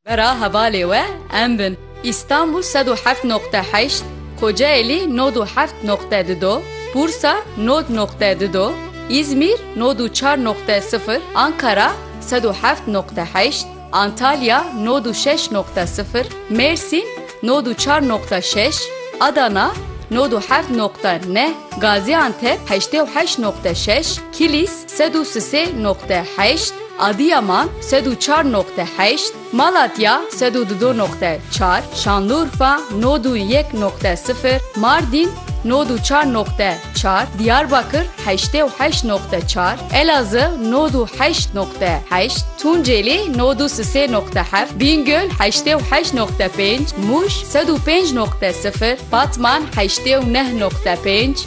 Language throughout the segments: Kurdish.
Vera hevalê we em bin. Îstanbul sed û heft noqte heşt, Kocaelî nod û heft noqte di do, Bursa nod noqte di do, Îzmîr nod û çar noqte sifir, Ankara sed û heft noqte heşt, Antalya nod û şeş noqte sifir, Mêrsîn nod û çar noqte şeş, Adana nod û heft noqte neh, Gazîantep heştê û heşt noqte şeş, Kilîs Sed û sisê noqte heşt, Adiyaman, sed û çar noqte heşt, Malatya, sed û dido noqte çar, Şanlurfa, nod û yek noqte sifir, Mardîn, nod û çar noqte çar, Diyarbakir, heştê û heşt noqte çar, Elazığ, nod û heşt noqte heşt, Tunceli, nod û sisê noqte heft, Bîngöl, heştê û heşt noqte pênc, Mûş, sed û pênc noqte sifir, Batman, heştê û neh noqte pênc,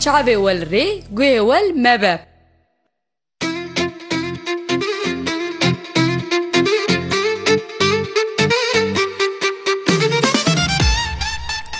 Çavê wel rê, guhê wel mebe.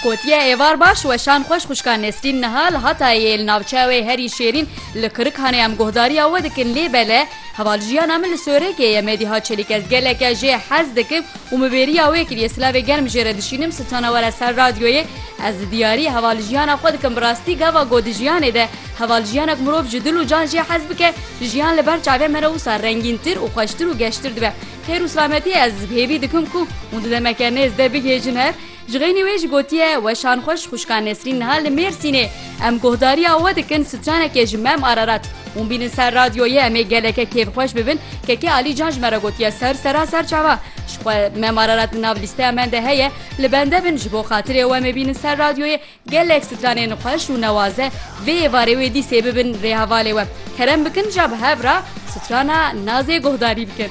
Gotiye êvar baş weşan xweş xwişka Nesrîn niha li Hatayê li navçeyê herî şêrîn li Kirikhanê em guhdarîya we dikin lê bele Heval jiyana min li Sorekê ye, me diha çelîk ez geleke jê hez dikim û min bêriya wê kiriye silavê germ jê re dişînim sitana were ser radyoyê ez di diyariyê heval jiyana xwe dikim bi rastî gava got di jiyanê de heval jiyanek mirov ji dil û can jê hez bike jiyan li ber çavê me re wisa rengîntir û xweştir û geştir dibe xêr û silametiyê ez hêvî dikim ku hûn di demeke nêz de bigihêjin hev. Ji xeynî wê jî gotiye, Weşan xweş xwişka Nesrîn niha li Mêrsînê. Em guhdariya we dikin stranekê ji Mem Ararat. Hûn bînin ser radyoyê em ê geleke kêfxweş bibin. Kekê Alî Can ji me re gotiye ser sera ser çava. Ji xwe Mem Ararat li nav lîsteya me de heye. Li bende bin ji bo xatirê we em ê bînin ser radyoyê gelek stranên xweş û newaze vê êvarê wê dîsê bibin rê hevalê we. Kerem bikin ja bi hev re strana Nazê guhdarî bikin.